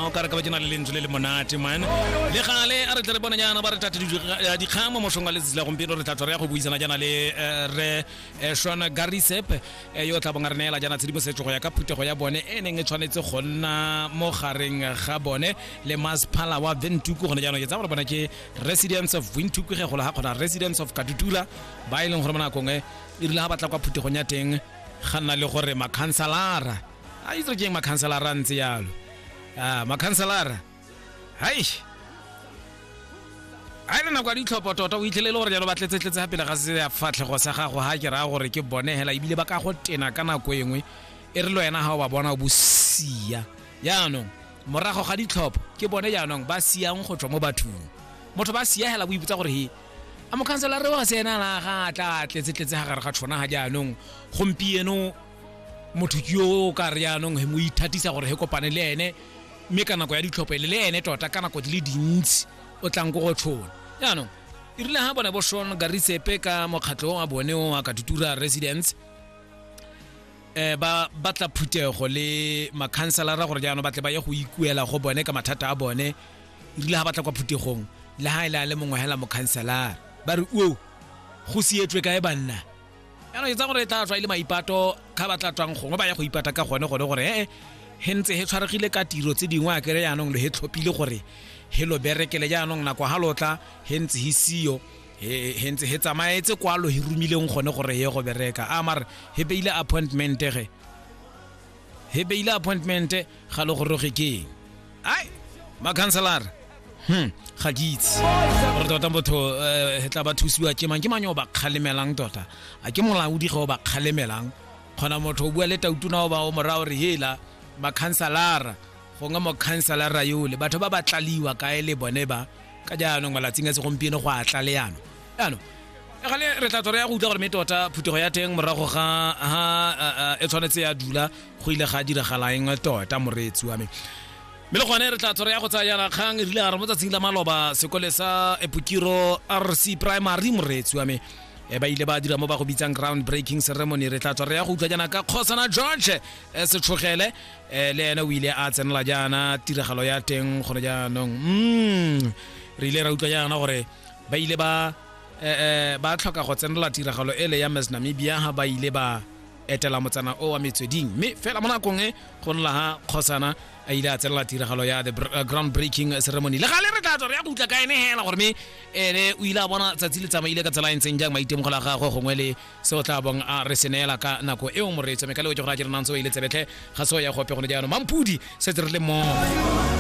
o kare ka ba ke na le lentswe le le monate man le gale a re tle re bona jaana ba re tate dikgang mo mosong wa letsatsi la gompieno re tlatlo re ya go buisana jaana le eh, re eh, shona garisep eh, yo o tla bong a re neela jaana tshedimosetso go ya ka phuthego ya bone e neng e tshwanetse go nna mo gareng ga bone le masephala wa ventuku gone jaanong ke tsa gore bona ke residence of ventuku ge gola ga kgona residence of katutula ba e leng gore mo nakong e e rile ga batla kwa phuthegong ya teng ga nna le gore makhansalara a itse re jeng makhanselara ntse yalo a makhanselara haish a le nako ya ditlhopho tota o itlhele le gore jalo ba tletsetletse ga pele ga se ya fatlhego sa gago ga ke raya gore ke bone hela ebile ba ka go tena ka nako e nngwe e re le wena ga o ba bona o bosia jaanong morago ga ditlhopho ke bone jaanong ba siang go tswa mo bathong motho ba sia hela boipotsa gore he a mokhanselara wa se ena la ga a tla tletsetletse ga gare ga tshona ga jaanong gompieno motho ke yo o ka re yaanong he mo ithatisa gore he kopane le ene mme ka nako ya ditlhophele le ene tota ka nako di le dintsi o tlang ko go tshona yaanong e rile ga bone bo shon garitsepe ka mokgatlho wa bone o a katutura residence um ba batla phuthego le makhanselara gore jaanong batle ba ye go ikuela go bone ka mathata a bone e rile ga batla kwa phuthegong le ga e le a le mongwe hela mokhanselara ba re o go sietswe kae banna jaanong e tsa gore e tla tswa e le maipato ga ba tla tswang gongwe ba ya go ipata ka gone gone gore ee he ntse he tshwaregile ka tiro tse dingwe a kere jaanong lo he tlhophile gore he lo berekele jaanong nako ga lotla he ntse he siyo he ntse he tsamaetse kwa lo he romileng gone gore ye go bereka a mare he beile appointment ge he beile appointment ga le goroge keng ai makhanselara hmm ga ke itse gore tota botho um tla ba thusiwa ke mang ke mang yo ba kgalemelang tota a ke molaodi ge o ba kgalemelang kgona motho o bua le tautuna o ba o mora gore hela makhanselara gongwe mokhanselara yole batho ba ba tlaliwa kae le bone ba ka jaanong malatsing a segompieno go a tla le yana ano gale re tla tswa re ya go utlwa gore mme tota phutego ya teng morago ga ha e tshwanetse ya dula go ile ga diragalaeng tota moreetsi wa me mme le gone re tla tswa re ya go tsaya yana kgang e rile gare mo tsatsing la maloba sekole sa epokiro rc primary moreetsi wa me e ba ile ba dira mo ba go bitsang ground breaking ceremony re tla tswa re ya go utlwa jaana ka kgosana george e setlhogele um le ene o ile a tsenela jaana tiragalo ya teng gone jaanong mm re ile ra utlwa jaana gore ba ile ba eh, eh, ba tlhoka go tsenela tiragalo ele ya Miss Namibia ha ba ile ba etela motsana o wa metsweding mme fela mo nakong e go nla ha kgosana a ile a tsenela tiragalo ya the br- eh, ground breaking ceremony le gale re tla tswa re ya go utla ka ene hela gore mme ene o ile a bona tsatsi le tsamaile ka tsela e ntseng jang maitemogelo a gagwe gongwe le se o tla bong a re seneela ka nako eo moreetso mme ka leo ke gore a ke re nantse o ile tsebetlhe ga se o ya gope gone jaanong mampudi setse re le mo